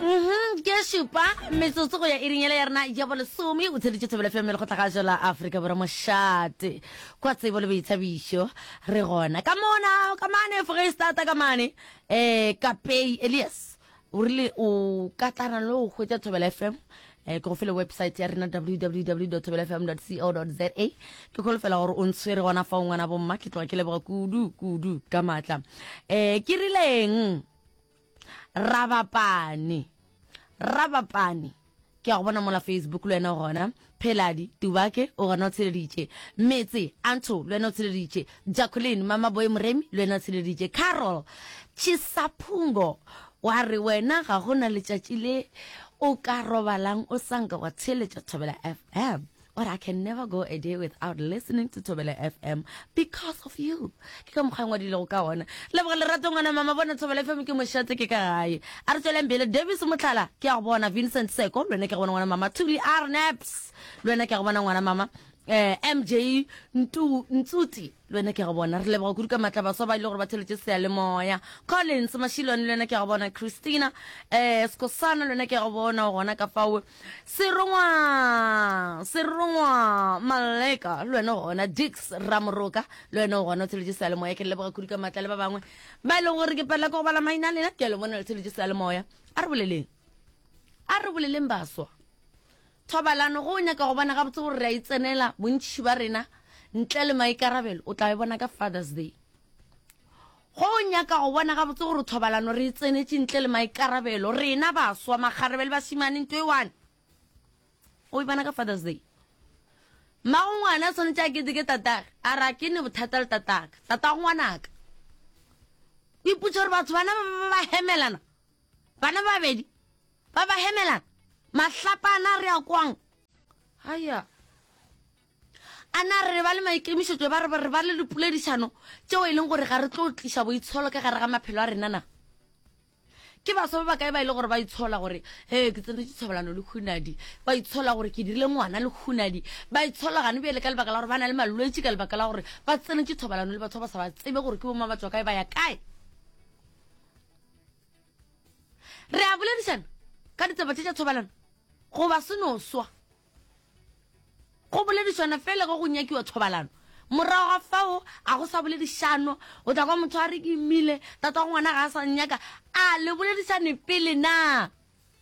Mhm, ke šupa metsotso go ya e ringele ya rena ya bolesome o tsheditše thobelo fm le go tlagajo la aforika borwa mošate kwa tsebo le boithabišo re gona ka mona ka mane foreistata ka mane um kapei elias o rile o ka tlana le go hwetša thobelo fm um ke go fele website ya rena www thobelo fm co za ke kholofela gore o ntshwere gona fa o ngwana bomma ke tloga ke leboga kudu kudu ka maatla um ke rileng Rabapane. Rabapane. ke a go bona mola facebook le wena gona pheladi tubake o gona o tsheleditše metse anto le wena o tsheleditše jacqueline mama boy moremi le wena o tsheleditše carol chisaphungo wa re wena ga go na letšatši le o ka robalang o sanka wa theletša thobela fm But I can never go a day without listening to Thobela FM because of you. Ke ka mokgwa ngwadilego ka ona. Leboga lerato ngwana mama bona Thobela FM ke mošate ke ka gae. A re tsweleng pele Davis Motlhala ke ya go bona Vincent Seko le wena ke go bona ngwana mama Thuli Arnaps le wena ke ya go bona ngwana mama eh MJ Ntu Ntsuti le wena ke ya go bona re leboga kudu ka matla baswa ba ile gore ba theletše seyalemoya Collins Mashilwane le wena ke ya go bona Christina eh Skosana le wena ke ya go bona gona ka fawe Serongwa! Serongwa! Maleka, le wena gona, Dix, Ramoroka, le wena o gona, o tsheletše sealemoya, ke le leboga kudu ka matla le ba bangwe. Ba e leng gore ke palela ka go bala maina a lena, ke a le bona le tsheletše sealemoya. A re boleleng. A re boleleng baswa. Thobalano go o nyaka go bona gabotse gore re a e tsenela bontši ba rena ntle le maikarabelo o tla e bona ka Father's Day. Go nyaka go bona gabotse gore thobalano re e tsenetše ntle le maikarabelo, rena baswa, makgarebe le bašemane, nto e one. O e bona ka Father's Day. Mmago ngwana tshwanetse a keteke tatage, a ra ke ne bothata le tataka, tatago ngwanaka. O ipotsa gore batho bana ba ba hemelana, bana ba babedi, ba ba hemelana, mahlapana re ya kwang. Haya. A na re ba le maikemišetšo ba re ba le dipoledišano tšeo e leng gore ga re tlo tliša boitsholo ka gare ga maphelo a rena na? Ke baswa ba bakae ba e le gore ba itshola gore he ke tsenetše thobalano le hunadi, ba itshola gore ke dirile ngwana le hunadi, ba itshola gane bjale ka lebaka la gore ba na le malwetši ka lebaka la gore ba tsenetše thobalano le batho ba ba sa ba tsebe gore ke boma ba tswa kae ba ya kae? Re a boledišana ka ditaba tše tša thobalano goba se no swa? go boledišana fela ge go nyakiwa thobalano morago ga fao a go sa boledišano o tla kwa motho a re ke imile tata go ngwana ga a sa nyaka a le boledišane pele na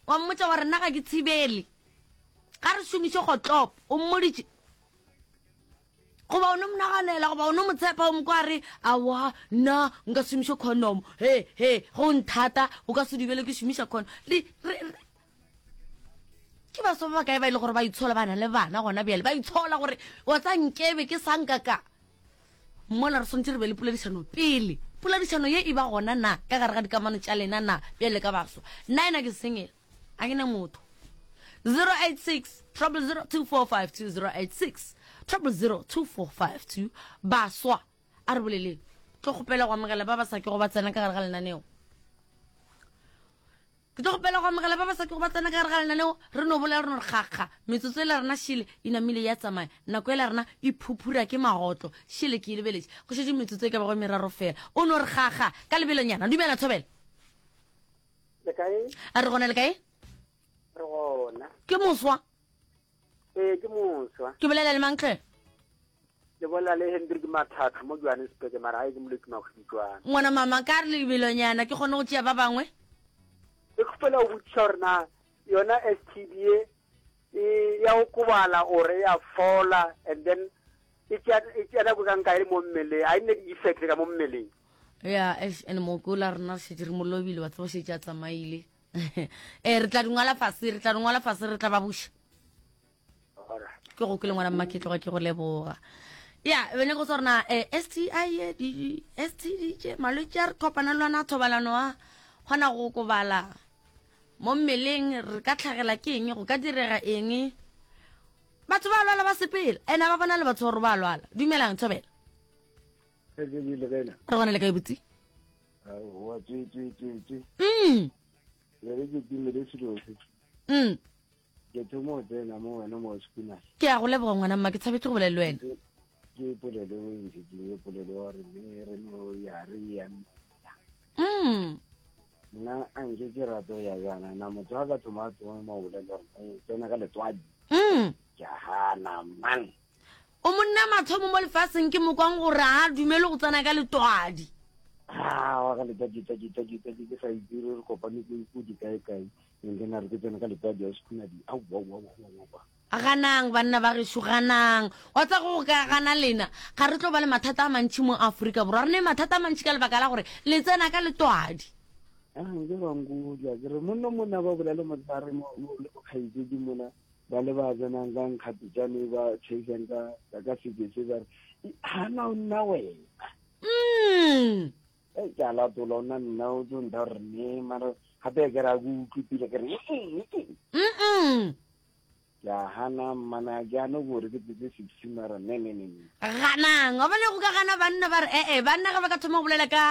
wa mmotsa wa rena ga ke tshibele ga re šomiše gotlop o mmoditše goba o ne mo naganela goba o ne mo tshepa o mo kwa re awa nna nka šomiše condom he he go nthata o ka se dibele ke šomiša condom ke ba ba kae ba ile gore ba itshola bana le bana gona bjale ba itshola gore wa tsa nkebe ke sanka ka mola re tshwanetse re be le poledišano pele poledišano ye e ba gona na ka gare ga dikamano tša lena na bjale ka baswa nna ena ke sengela a ke ne motho 086 trouble 0245 086 trouble 0245 baswa a re boleleng tlo kgopela go amogela ba ba sa ke go ba tsena ka gare ga lenaneo Ke tlo kgopela go amogela ba ba sa kego ba tsena ka gare ga lenaneo, re no bolela re no re kgakga. Metsotso e la rena šele e namile ya tsamaya, nako e la rena e phuphura ke magotlo. Šele ke e lebeletše, go šetše metsotso e ka bago e meraro fela. O no re kgakga ka lebelonyana. Dumela, Thobela. Le kae? A re gona, le kae? Re gona. Ke moswa. Ee, ke moswa. Ke bolela le mang tle? Le bolela le Hendrik Mathatha mo Johannesburg mara a e ke molwetsi magwibitswana. Ngwana mama ka re lebelonyana ke kgone go tšea ba bangwe. Ke kgopela go botšiša gore na yona STD e e ya go kobala or e ya fola and then e tšea e tšea nako ka nka e le mo mmeleng a e nne di-effect ka mo mmeleng. Ya eish ene mokola rena šetse re mo lobile wa tseba šetse a tsamaile. ee re tla di ngwala fase re tla di ngwala fase re tla ba buša ke go ke le ngwana mma ke tloga ke go leboga ya bene go tsa rona um s t i e s t d j malwetse a re kopana le lwana thobalano a kgona go kobala mo mmeleng re ka tlhagela ke eng go ka direga eng batho ba lwala ba sepela ene ba bona le batho gore ba lwala dumelang thobela Re gona le kae botse? Wa tse tse tse tse. Mm. Le re ke timele selo se. Mm. Ke thomo o tsena mo wena mo sekuna. Ke a go leboga ngwana mma ke tshabetse go bolela le wena. Ke polelo o ntse ke e polelo wa re me re no ya re ya. Mm. Nna a nke ke rato ya yana na motho a ka thoma a thoma mo bolela re tsena ka letswadi. Mm. Ke hana mang. O monna mathomo mo lefaseng ke mokwang gore ga a dumele go tsena ka letwadi. Haa, wa ka letwadi, twadi, twadi, twadi, ke sa itse re kopane ke ko di kae kae, and then a re ke tsene ka letwadi, a sekhunadi, au, au, au, au, au, au. Ganang, banna ba gešo, ganang. Wa tsa go ka gana lena, ga re tlo ba le mathata a mantši mo Afrika Borwa. Re ne mathata a mantši ka lebaka la gore le tsena ka letwadi. Haa, nke ba nkutlwa, ke re, monno mona ba bolale motshare mo, mo, le bokgaitsedi mona, ba le ba tsenang ka nkgapetšane ba tšhaisang ka ka ka seke se ba re hana o nna wena mm e ke a latola o nna nna o tlo nda re ne mara gape ke ra go utlwe pele ke re mm ke a hana mmana ke ane gore ke tsetse six mara ne ne ne ne ganang wa bone go ka gana banna ba re ee banna ga ba ka thoma go bolela ka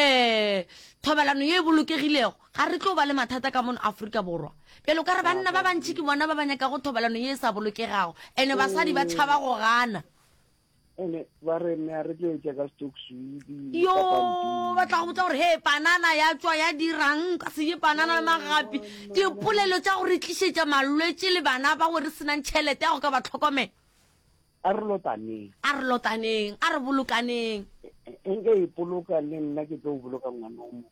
um thobalano ye e bolokegilego Ga re tlo ba le mathata ka mono Afrika Borwa. Bjale o ka re banna ba bantši ke bona ba ba nyakago thobalano ye e sa bolokegago, ene basadi ba tšhaba go gana. Ene ba re mme a re tlo etša ka stock swidi Yo, ka pampiri. ba tla go botsa gore he panana ya tšwa ya dirang ka se je panana le magapi. Dipolelo tša go re tlišetša malwetši le bana ba go re senang tšhelete ya go ka ba tlhokomela. A re lotaneng. A re lotaneng, a re bolokaneng. Nke ipoloka le nna ke tlo boloka ngwana o mong.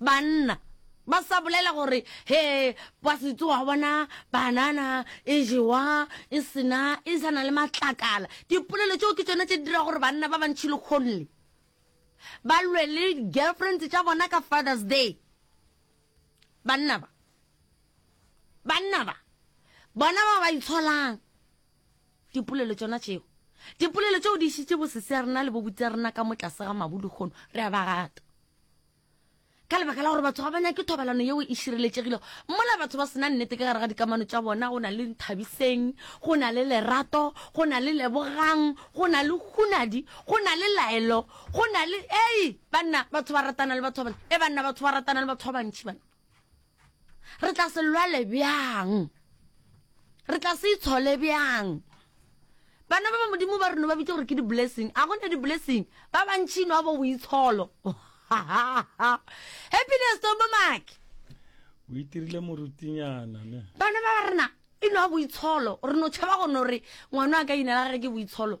Banna ba sa bolela gore he ba se tsoga bona banana e jewa e sena e sa na le matlakala dipolelo tšeo ke tsone tse di dira gore banna ba bantšhi le kgonle ba lwe le girlfriends tša bona ka father's day banna ba banna ba bona ba ba itsholang dipolelo tsona tšeo dipolelo tšeo di šitše bosese ya rena le bobutse ya rena ka mo tlase ga mabu le kgono re a ba rata ka lebaka la gore batho ga ba nyake thobalano yeo e šireletšegilego mola batho ba sena nnete ka gare ga dikamano tša bona go na le nthabiseng go na le lerato go na le lebogang go na le hunadi go na le laelo go na le ei banna batho ba ratana le batho ba bantši e banna batho ba ratana le batho ba bantši bana re tla se lwale bjang re tla se itshole bjang bana ba ba modimo ba reno ba bitse gore ke di-blessing a gone di-blessing ba bantšhino a bo boitsholo happiness tombo make o itirile morutinyana ne bana ba rena e no a boitsholo re no tšhaba gone gore ngwana a ka inela gage ke boitsholo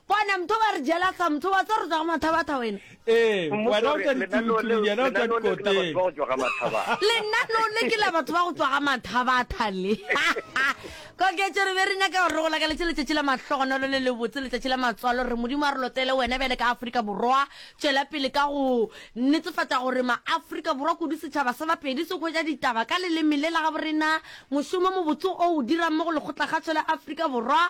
Bona, mtho ba re jela sa mtho wa tse re tswa ga mathabatha wena. Ee, wena o tswa ditulutulung yena o tswa dikoteng. Lenaneo le ke la batho ba go tswa ga mathabatha le. Koketšo re be re nyaka gore re go lakaletše letšatši la mahlogonolo le lebotse, letšatši la matswalo. Re Modimo a re lotele wena bjale ka Afrika Borwa. Tšwela pele ka go netefatša gore ma-Afrika Borwa kudu setšhaba sa Bapedi se hwetša ditaba ka leleme le la gabo rena. Mošomo mobotse o o dirang mo go Lekgotla-Kgašo la Afrika Borwa